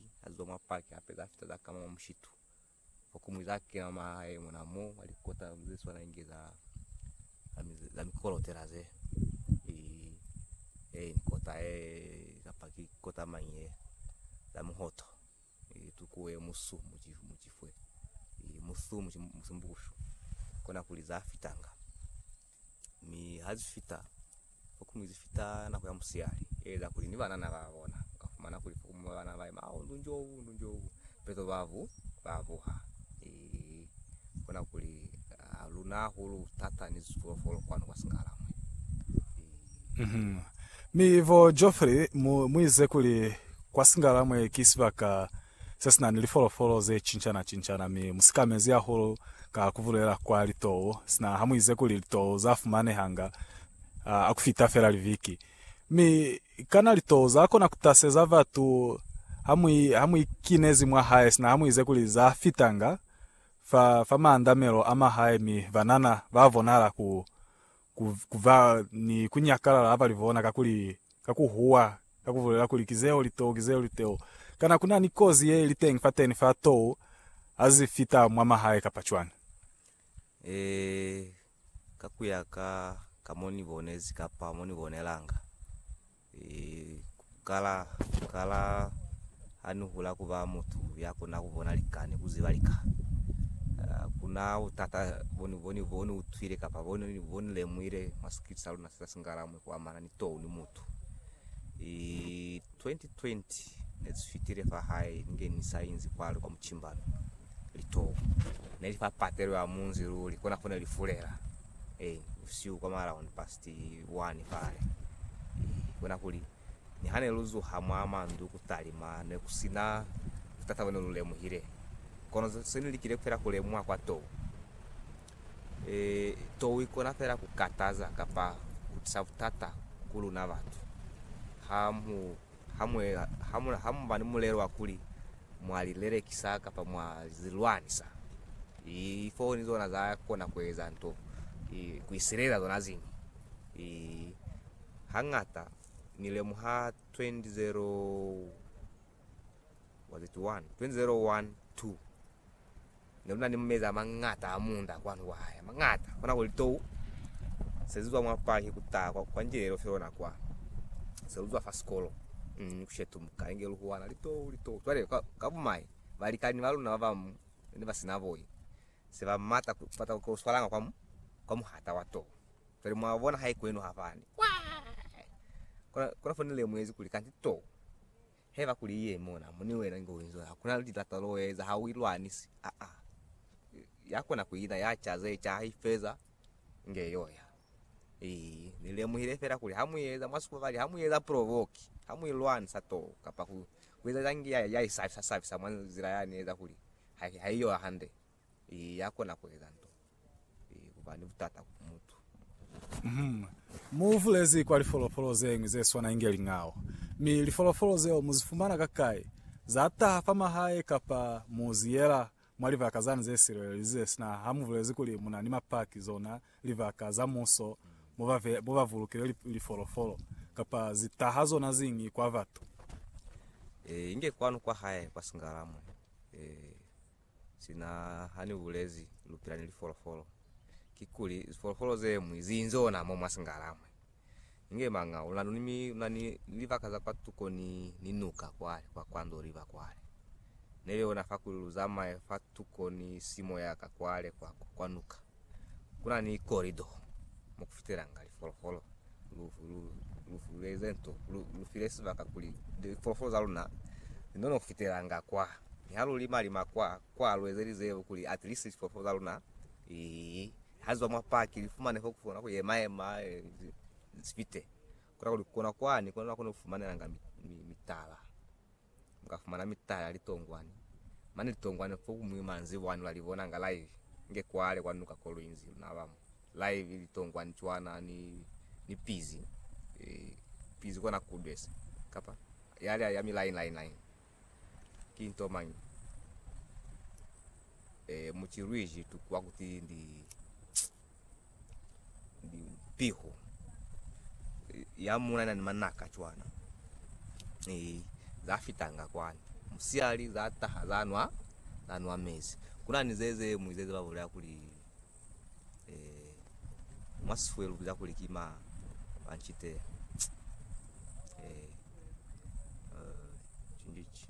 Muzwale a ziba mwa paki hape za fita za kama mwa mushitu. Fa ku muiza a kena mwa hae mona mo mwa likota ze swana inge za za mikolotela ze. Ee, ni kota ye kapa ki kota mañi ye za muhoto. Ee, tuku ye musu mucifwe. Ee, musu musimbukushu. Kona kuli za fitanga. Mi ha zi fita fokumu zi fita nako ya musihali, e eza kuli ni banana ba bona. U ka fumana kuli fokumu ba banana ba yema, Au, ndu njo u, ndu njo u. Peto ba bu, ba buha. Eehi. Ku kona kuli ha lu na hahulu thata ni zipolofolo kwanu kwa Singalamwe. Eehi. Mi bo Geoffrey mu, mu ize kuli kwa Singalamwe ki sibaka se si na ni lifolofolo ze cincana-cincana mi mu sikamezi hahulu ka ku bulela kwa litou, sina ha mu ize kuli litou za fumanehanga ha ku fita fela liviki. Mi, kana litou za kona ku taseza batu ha mu, ha mu ikinezi mwa hae sina ha mu ize kuli za fitanga fa, fa maandamelo a mwa hae mi banana ba bonahala ku, ku, ku ba ni ku nyakalala ha ba li bona, kakuli, ka ku huwa, ka ku bulela kuli, Ki zeo li too, ki zeo li teo. Kana ku na ni kozi ye li teñi fateni fa too ha zi fita mwa mahae kapa cwañi? Ee, ka ku ya ka, ka mo ni bonezi kapa mo ni bonelanga. Kala kala ha ni hula ku ba mutu ya kona ku bona lika ni ku ziba lika. Kuna butata bo ni bo ni bo ni utwile kapa bo ni bo ni lemuhile mwa sikili sa luna se sa singalamwi ku amana ni tou ni mutu. I 2020 ne si fitile fa hae ni nge ni sa inzi kwale kwa muchimbano, litou ne li fa patelo ya munzi luli kona fo ne li fulela. Ee, busihu kwa malao ni pasta. Ti wani fale. I bona kuli, niha ne lu zuha mwa mandu ku talima, ne ku si na butata bo ne lu lemuhile. Kono se ni likile feela ku lemuha kwa tou. E, tou i kona feela ku kataza kapa ku tisa butata ku luna batu. Ha mu ha mu, ha mu ba ni mulelo wa kuli mwa li lelekisa kapa mwa li lwanisa, i, lifoni zona za kona ku eza nto, i, ku isilelela zona ziñwi. I, Hañata ni lemuha 2001, was it 1? 2001, 2. Ne lu na ni meza a mañata a munda kwanu kwa hae, a mañata, kona kuli tou se zizwa mwa paki ku taha kwa, kwa njila ye lofile lona kwa, se lu zwa fa sikolo, mm, ku shetumuka, inge lu huwana litou, litou. Cwale, ka, ka bumai, balikani ba luna ba bañwi ne ba si na boi, se ba mata ku bata ku lu swalanga kwa, kwa muhata wa tou. Cwale, mwa bona, haikwenu ha fani. Kwaa! Kona, kona fo ni lemuhezi kuli kanti tou. Haiba kuli i ye mona mo ni wena inge u inzwela, ku na ni lilata lo u eza, ha u ilwanisi. Aa, ya kona ku ina, ya ca ze ca, ha i feza, inge yo ya. Ii, Ni lemuhile fela kuli ha mu eza, mwa sukubali, ha mu eza provoke, ha mu ilwanisa too, kapa ku, ku eza za ngi ya, ya i sa, sa sabisa mwa nzila ya ni eza kuli ha, ha i yo hande. Ee, ya kona ku eza nto ye, ku ba ni butata ku mutu. Uhum. Mu bulezi kwa lifolofolo ze ñwi ze swana inge lingao. Mi lifolofolo zeo mu zi fumana kakai? Za taha fa mahae kapa mu zi yela mwa libaka zani ze silelelize, sina ha mu bulezi kuli mu na ni mapaki, zona libaka za muso mo ba ve, mo ba bulukile li, lifolofolo? Kapa zi taha zona ziñi kwa batu? Ee, inge kwanu kwa hae kwa Singala mwe. Ee. Sina hani ubulezi lupila ni lifolofolo kikuli zifolofolo zemwi ziinzi ona mo mwa singala mwe inge manga una ni mi una ni libaka za kwa tuko ni ni nuka kwale kwa kwa ndo liba kwale neli ona fa kuli luzamaye fa tuko ni simo yaka kwale kwa kwa nuka Ku na ni korido mo ku fitelanga lifolofolo. Lufu lu, lufu lu eze nto, lu, lu file sibaka kuli lifolofolo za luna li none ku fitelanga kwa. Mi ha lu lima lima kwa, kwa lu ezelize kuli at least lifolofolo za luna li, ha li zwa mwa paki li fumane fo ku kona ku yema yema, li fite. Ku na kuli ku kona kwani, ku na kwa ku ni fumanelanga mi, mi, mitala. muka fumana mitala ya litongwane mane litongwane fo kumuñwi manzibwani ula libona nga live nge kwale kwa nuka Kolwinzi naba mo live litongwane cwana ni ni pizi e pizi kona kudwesa kapa yale ya mi line line line ki nto manyi e muchilwiji tukwa kuti ndi piho ya muna na ni manaka cwana e za fitanga kwana musiali za taha za nwa za nwa mezi kuna ni zeze mu zeze ba bolela kuli eh mwa sifwelu za kuli kima banchite eh uh, chindichi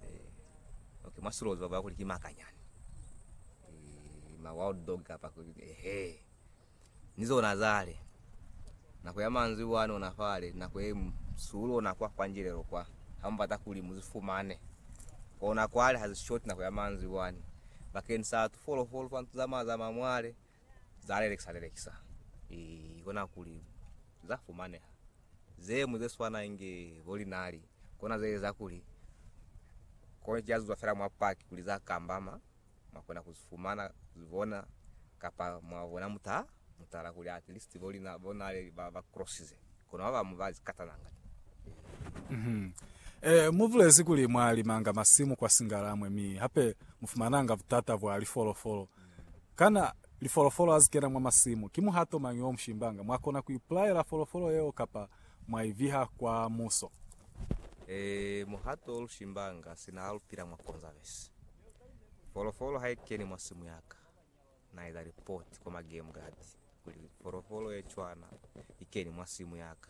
Eh, okay, mwa sulozi baba kuli ki makanyani. Eh, ma wild dog kapa kuli ehe. Ni zona zale. Nako ya manzwi wani ona fale, nako e sulo na kwa kwa njilelo kwa. Hambata kuli muzifumane. Kona kwale has short nako ya manzwi wani. Bakeng sa tu follow follow fantu zama zama mwale. Za lelekisa lelekisa i kona kuli za fumaneha. Ze ñwi ze swana inge bo linali kona ze eza kuli kono ki azuzwa fela mwa paki kuli za kambama mwa kona ku fumana ku bona kapa mwa bona muta mutala kuli at least bo lina bo nale ba ba crossize kono ba bamu ba zikatana nga ni. Eh, mu bulezi kuli mwa limanga masimu kwa Singalamwe mi hape mu fumananga butata bwa lifolofolo. Kana lifolofolo ha zi kena mwa masimu, ki muhato mañi o mu shimbanga? Mwa kona ku ipulaela folofolo yeo kapa mwa i viha kwa muso. Ee, muhato o lu shimbanga sina ha lu pila mwa Conservancy. Folofolo ha i keni mwa simu ya ka, na eza lipoti kwa ma game guard kuli folofolo ye cwana i keni mwa simu ya ka.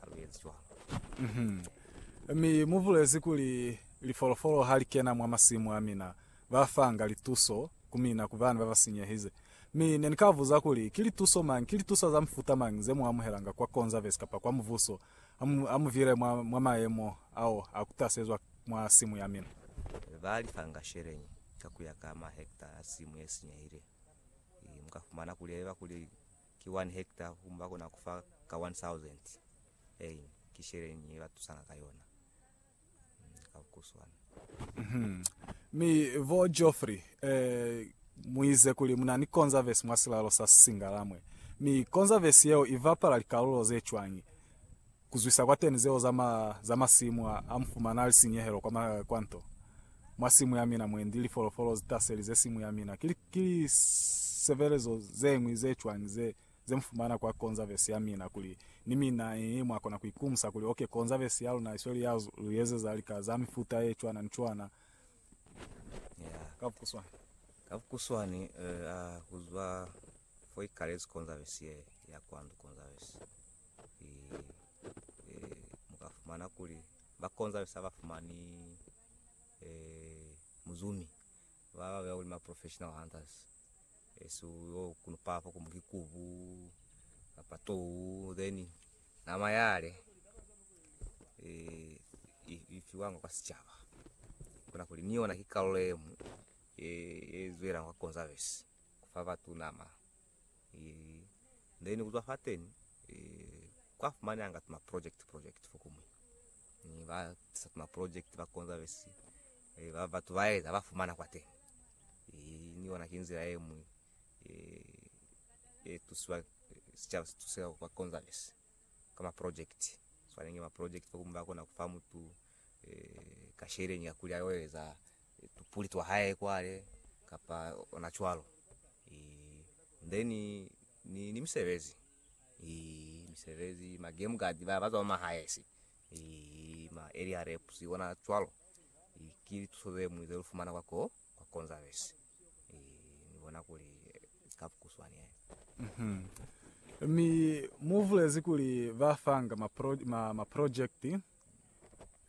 ha lu ezi cwalo. Mi mu bulezi kuli, Lifolofolo ha li kena mwa masimu a mina, ba fanga lituso ku mina ku bana ba ba sinyehize. Mi ne ni ka buza kuli, Ki lituso mañi, ki lituso za mufuta mañi ze mu amuhelanga kwa Conserves kapa kwa Mubuso ha mu, ha mu vile mwa, mwa mayemo ao a ku tasezwa mwa simu ya mina? Ba li fanga sheleñi ka ku ya ka mahekta a simu ye sinyehile. Mu ka fumana kuli, haiba kuli ki one hekta ku ba kona ku fa ka one thousand ein ki sheleñi ye ba tusanga ka yona ka bukuswana. Mi bo Geoffrey eh, mu ize kuli mu na ni konzavesi mwa silalo sa Singalamwe, mi konzavesi yeo i bapala likalulo ze cwañi? Kuzwisa kwa teni zeo za ma, za masimu a, a mufumana ali sinyehelo kwa ma, kwa nto. Mwa simu ya mina mwendi lifolofolo zi taselize simu ya mina. Ki, ki li sevelezo zeñwi ze cwañi ze, ze mufumana kwa konzavesi ya mina kuli ni mina, ii, mwa kona ku ikumusa kuli, ok, konzavesi ya luna isweli ya lu ezeza lika za mifuta ye cwana ni cwana. Ya. Ka bukuswani. Ka bukuswani, eh, a, kuzwa fo ikalezi konzavesi ye, ya kwa ndu, konzavesi. mu ka fumana kuli ba konzali sa ba fumani muzumi ba ba beha kuli ma professional hunters so yo kunu pala fo kumbu ki kubu kapa tou then nama yale ifiwanga kwa sicaba kuna kuli ni yona ki karolo emu e zwela kwa conservancy kufa batu nama then kuzwa fateni kwa fumananga tuma project project fokumwi ni ba tisa tuma project ba konza besi eh, ba batu ba eza ba fumana kwa teni eh, ni ona kinzira emwi eh, eh, tusiwa eh, sichaba situseka kwa konza besi kama project swanenge ma project fokumwi ba kona kufa mutu eh, kasheleni ya kulya yoeza tupuli twa hae kwale kapa ona cwalo then ni ni misebezi misebezi ma game guard ba ba zwa ma highs ma area reps bona cwalo ki lituso ze muñwi ze lu fumana kwa ko kwa conservancy ni bona kuli ka bukuswana he. Mi mu vulezi kuli ba fanga ma, pro, ma, ma project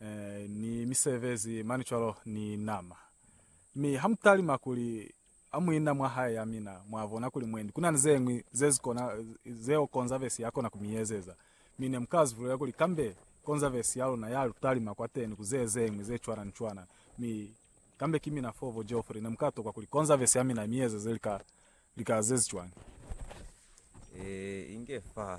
eh, ni misebezi mani cwalo ni nama. Mi hamutalima kuli amuina mwa hae ya mina, mwabona kuli mwendi kuna ni zeñwi zezikona zeo konzavesi yakona kumiezeza. Mi nemukazivulela kuli kambe konzavesi yaluna ya lutalima kwateni ku zezeñwi zecwana ni cwana. Mi kambe ki mina fo vo Geoffrey, nemukatokwa kuli konzavesi ya mina imiezeze lika, lika zezicwañi. Eh, inge fa